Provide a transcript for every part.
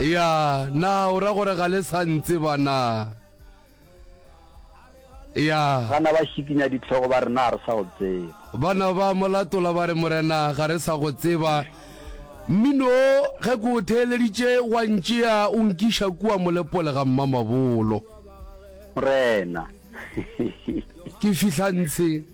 Ya, na o ra gore ga le sa ntseba na? Ya. Bana ba šikinya ditlhogo ba re, Na a re sa go tseba? Bana ba mo latola ba re, Morena, ga re sa go tseba. Mmino o, ge ke o theeleditše, wa ntšea o nkiša kua molepole ga mmamabolo. Morena. Ke fihla ntshe.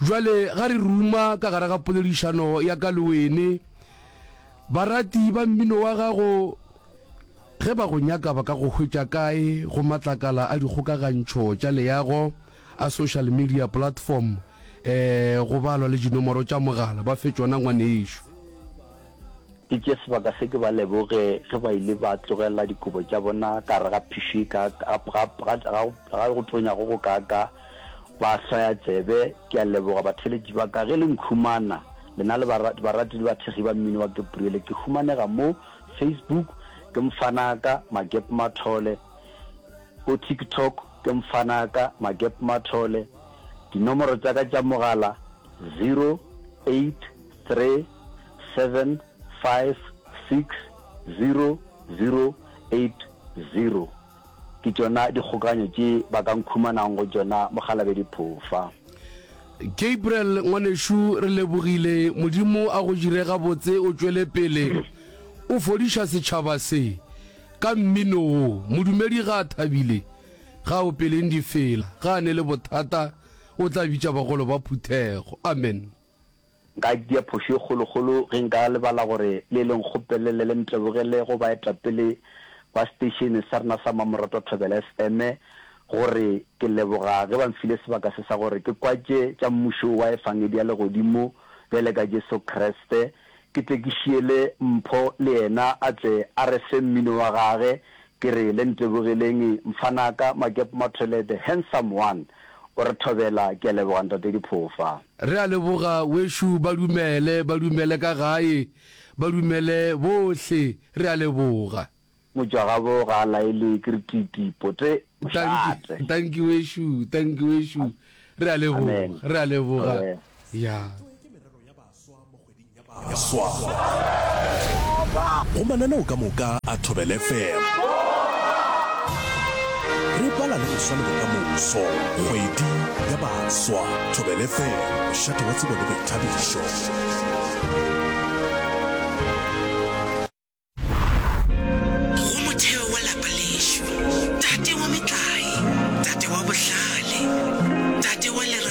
Jwale ga re ruma ka gare ga poledišano ya ka le wene. Barati ba mmino wa gago, ge ba go nyaka ba ka go hwetša kae go matlakala a dikgokagantšho tša leago a social media platform, um go balwa le dinomoro tša mogala? Ba fe tšona ngwanešu. Ke tšee sebaka se ke ba leboge ge ba ile ba tlogela dikobo tša bona ka gare ga phišo e kaakaa, ga go tonya go go kaakaa, ba hlwaya tsebe. Ke a leboga batheeletši ba ka ge le nkhumana, lena le barati le bathekgi ba mmino wa Gebriele. Ke humanega mo Facebook ke Mfanaaka Magepmathole, ko TikTok ke Mfanaaka Magepmathole. Dinomoro tša ka tša mogala, 083 999 466. 7560080 ke tšona dikgokaganyo tše ba ka nkhumanang go tšona Mokgalabedi Phofa. Gabriel ngwanešu re lebogile Modimo a go jire gabotse o tšwele pele o fodiša setšhaba se ka mmino wo modumedi ga a thabile ga o peleng di fela ga a ne le bothata o tla bitša bagolo ba phuthego amen. Nka dia phošo ye kgolokgolo ge nka lebala gore le le nkgopelele le ntlebogele go baetapele ba seteišene sa rena sa Mmamoratwa Thobela FM gore ke leboga ge ba nfile sebaka se sa gore ke kwatše tša Mmušo wa Efangedi ya Legodimo bjale ka Jesu Kriste Ke tle ke šiele Mpho le yena a tle a re fe mmino wa gage, ke re le ntebogeleng mfanaka Makepo Mathole the handsome one o re thobela, ke a leboga Ntate Diphofa. Re a leboga wešu ba dumele ba dumele ka gae ba dumele bohle re a leboga. Mojagabo ga a laelwe ke retiti, pote o šate. Tanki wešo, tanki wešo. Re a leboga, re a leboga. Ya. Go mananeo ka moka a Thobela FM. Re bala le go swa le bokamoso. Kgwedi ya baswa. Thobela FM, mošate wa tsebo le boithabišo. Go motheo wa lapa lešo, tate wa metlae, tate wa bohlale, tate wa lerato.